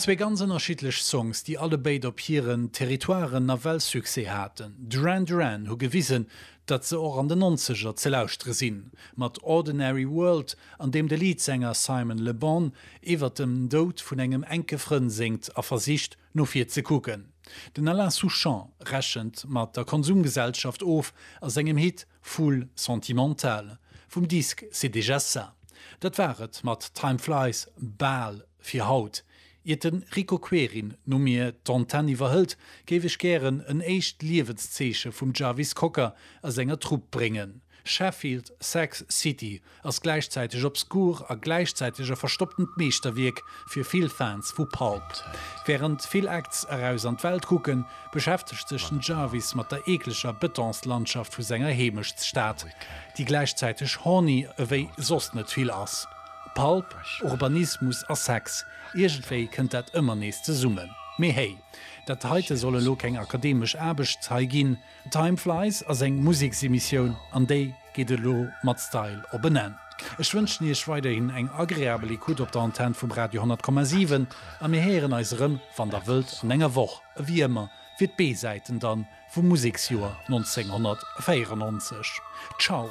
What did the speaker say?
Zwee ganz ënnerschiddlech Songs, déi allebéid op hiren Territoiren nawell Succès haten. Duran Duran hu gewisen, datt se och an den Nonzeger ze lauschtere sinn, mat Ordinary World, an deem de Leadsänger Simon Le Bon iwwert dem Doud vun engem enke Frënn séngt a versicht, no vir ze kucken. Den Alain Souchon rechent mat der Konsumgesellschaft of a sengem Hit Foule sentimentale vum Disque C'est déjà ça. Dat war et mat Time Flies bal fir haut. Iert de Rico Querin no mir d'Antenne iwwerhëlt, géif ech gären en éischt Liewenszeeche vum Jarvis Cocker a senger Trupp bréngen, Sheffield Sax City, ass gläichzäiteg obskur a gläichzäiteg e verstopptent Meeschterwierk fir vill Fans vu Pulp. Wärend vill Acts eraus an d'Welt kucken, beschäftegt sech den Jarvis mat der eekleger Betonslandschaft vu senger Heemechtsstad, déi gläichzäiteg horny ewéi soss net vill ass. Pulp, Urbanismus a Sex, iergendwéi kënnt dat ëmmer nees zesummen. Mee hey, dat heite soll elo keng akademesch Aarbecht hei ginn. Time Flies ass eng Museksemissioun an déi geet elo mat Style op en Enn. Ech wënschen Iech weiderhin eng agreabel Ecoute op der Antenn vum Radio 100,7 a mir héieren eis erëm, wann Der wëllt, an enger Woch a wéi ëmmer fir d'B-Säiten dann vum Museksjoer 1994. Ciao!